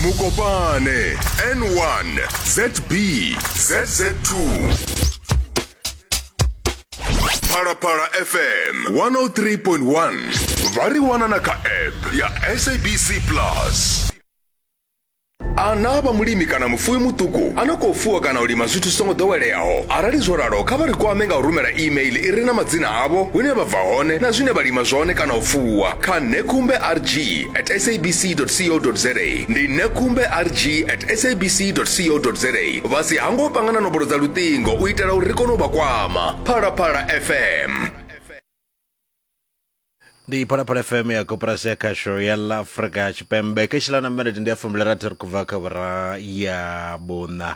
mukopane n1 zb zz2 phalaphala fm 103.1 vha ri wana na kha app ya sabc plus ana vha mulimi kana mufuwi muṱuku a no khou fuwa kana u lima zwithu zwi songo ḓoweleaho arali zwo ralo kha vha ri kwame nga u rumela email i re na madzina avho hune vha bva hone na zwine vha lima zwone kana u fuwa kha nekumbe rg at sabc.co.za ndi nekumbe rg at sabc.co.za vha si hango panga na nomboro dza luṱingo u itela uri ri kone u vha kwama phalaphala fm ndi phalaphala fm ya koporasi ya khasho ya la afrika tshipembe keshi la na minete ndi ya fumbilirathi ri khou bva kha vhura ya vhuṋa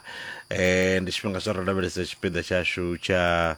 um ndi tshifhinga tsha ro lavhelesa tshipiḓa tshashu tsha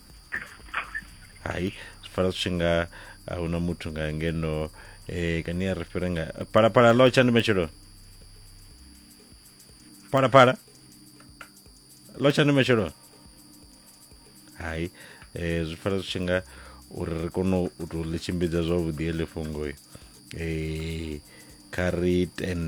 hai fara zwi tshi nga a huna muthu nga ngeno eh kani a ri fhire nga palapala lo tsha ndi matshelo palapala lo tsha ndi matshelo hai eh zwi fara zwi tshi nga uri ri kone u tou ḽi tshimbidza zwavhuḓi heḽi fhungo eh kha ri tende